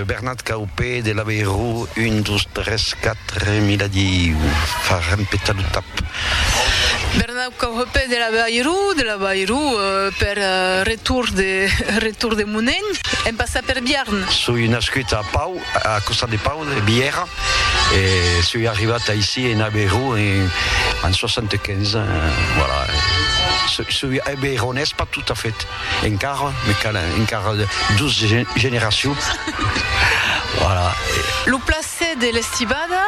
Bernat Caupé de Labeirou, un, dos, tres, quatre, mi la diu, fa rempetar lo tap. Bernat Caupé de Labeirou, de Labeirou, per retorn de retorn de Monènh, en passar per Biarn. Soi nascut a Pau, a costat de Pau, de Bièrra, e soi arribat aicí en Abeirou en 75, voilà, soi abeironés pas tot a fait. Encara me calen encara dos generacions. Lo plaser de l'estibada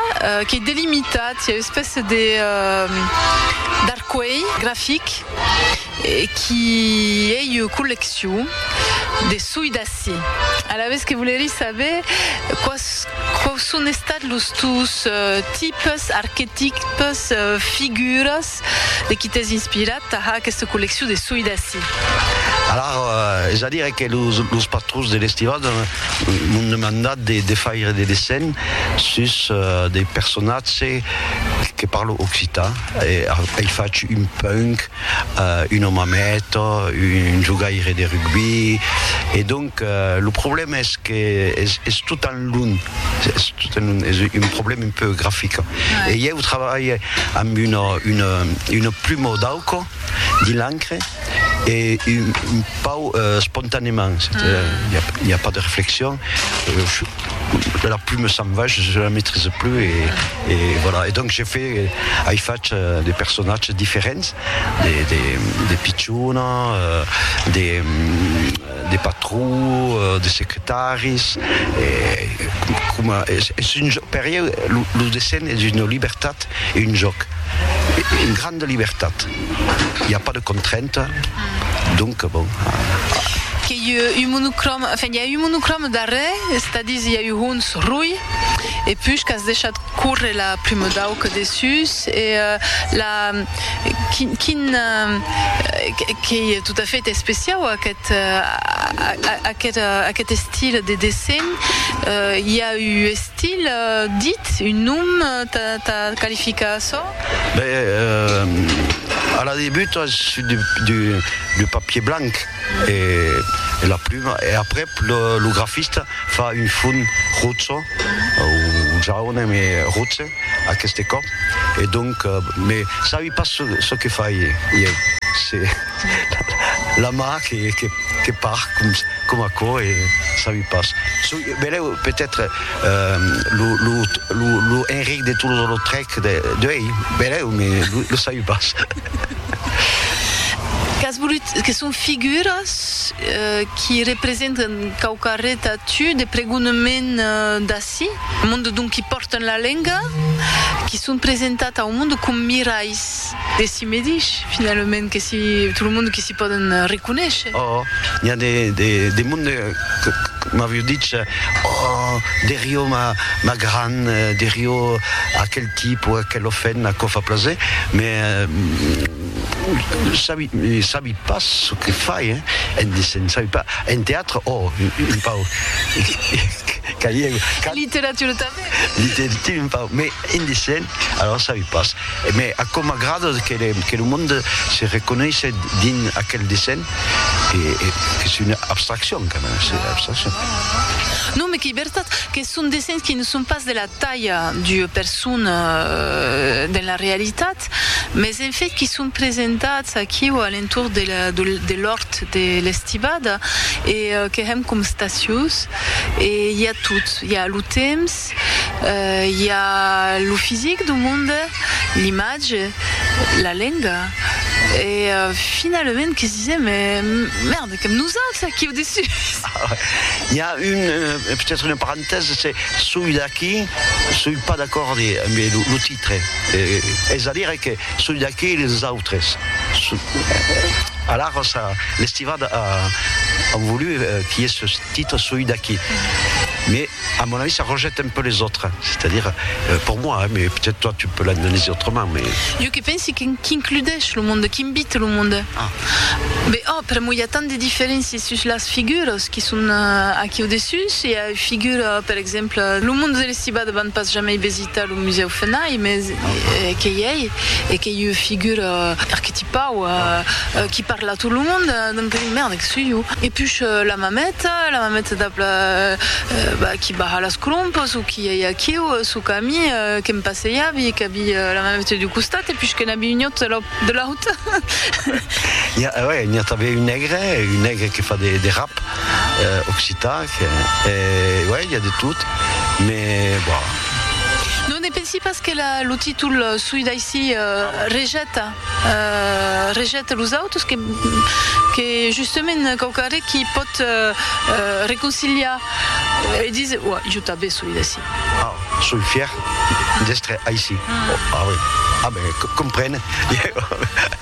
qu'ei delimitat, i a u'espèce d'arcuelh grafic qui ei ua colleccion de soi d'ací. Alavetz que volerí saber quau son estats los tus tipes, arquetipes, figuras Quitat, de qui t'es inspirat tà har aquesta colleccion de soi d'ací? Alar, es a dire que los patrons de l'Estival m'an demandat de faire de dessenh sus de personatge que parlo occitan, ei fach un punk, un omamèto, un jogaire de rugbi, e donc, Lo problèma es que es tot tan lunh, es un problèma un peu grafic. E ieu trabalhe amb una pluma d'auco dins l'encre e un pauc espontanèment, i a pas de reflexion, la pluma s'en va, je ne la maîtrise plus e voilà. E donc je fais, ai fach de personatges diferents, de pichona, de. De patrons, de secretaris, e coma es un jòc, per ieu lo dessenh es una libertat e un jòc, una granda libertat, i a pas de contrainta, donc bon. Que ieu un monocròme, enfin i a un monocròme darrèr, estadis i a un hons roi, e push qu'as deishat. Corre la prumor d'auca dessús e la quin quin qu'ei tot a fait especiau aquest aquest aquest estil de dessenh i a u estil dit un nom ta ta qualificar açò? Ben a la debut es du papier blanc. E la pluma, e aprèp lo grafista fa un fon roço o jaune me roçe aqueste còp e donc me sabi pas çò que fai ieu se la ma que par com aquò e sabi pas çò beleu peut-être lo Enric de Toulouse-Lautrec de ei beleu me lo sabi pas. Qu'as volut, que son figuras qui representen quauquarret a tu de pregonement d'ací, monde donc qui pòrten la lenga, qui son presentat au monde com miralhs de si medish, finalament, que si tot lo monde qui si pòden reconéisher. Ò, n'i a de monde. M'avió dich, Oh, Deriò, ma gran, Deriò, aquel tip o aquel ofèn aquò fa plaser, me sabi pas çò que fai, se'n sabi pas. En teatre, oh, un pauc, qu'alieu, qu'alieu, literatura tanben, un pauc, me indecent. Alara sabi pas, me aquò m'agrada que lo monde se reconeishe dins aquel dessenh, qu'es una abstraccion quand même, c'est une abstraccion. Non, me qu'ei vertat que son dessenhs qui ne son pas de la talha d'ua persona dins la realitat, mes en fait qui son presentats aquiu a l'entorn de l'òrt de l'Estivada e que hèm com statius e i a tot, i a lo temps, I a lo fisic du monde, l'imatge, la lenga e finalament que sisè, me mèrda, qu'èm nosauts aquí au dessus! I a un, peut-être una parentèsa, se soi d'aquí, soi pas d'acord amb lo titre, es a dire que soi d'aquí e les autres, alara ça, l'estivada an volut qu'i es ce titre soi d'aquí, mais À mon avis ça rejette un peu les autres, c'est-à-dire pour moi hein, mais peut-être toi tu peux l'analyser autrement mais. Jo que pensi qu'includèsh lo monde, qu'invite lo monde. Ah. Be òh, pr'amor i a tant de diferéncias sus las figuras qui son aquí au dessus, i a ua figura per exemple, lo monde de l'estibada van pas jamei Tà lo Musèu Fenay, mès qu'ei ei e qu'ei ua figura arquetipau qui parla a tot lo mond, donc merda, que soi jo? E push la mameta, la mameta dab la bah qui baha las colompos o qui ei aquiu suu cami, que'm passeiavi, qu'avi la mameta d'un costat e push que n'avi un autre de l'aut. N'i a, ouais, n'i a tanben un negre, un negre que fa de rap occitan. Uèi, i a de tot, me bon. Non ne pensi pas que lo títol soi d'aicí rejeta rejeta los autres, que justement quauquarre qui pòt reconciliar e dis uèi, jo tanben soi d'ací. Ah, soi fièr d'èstre aicí. Ah, uèi, ah ben, comprene.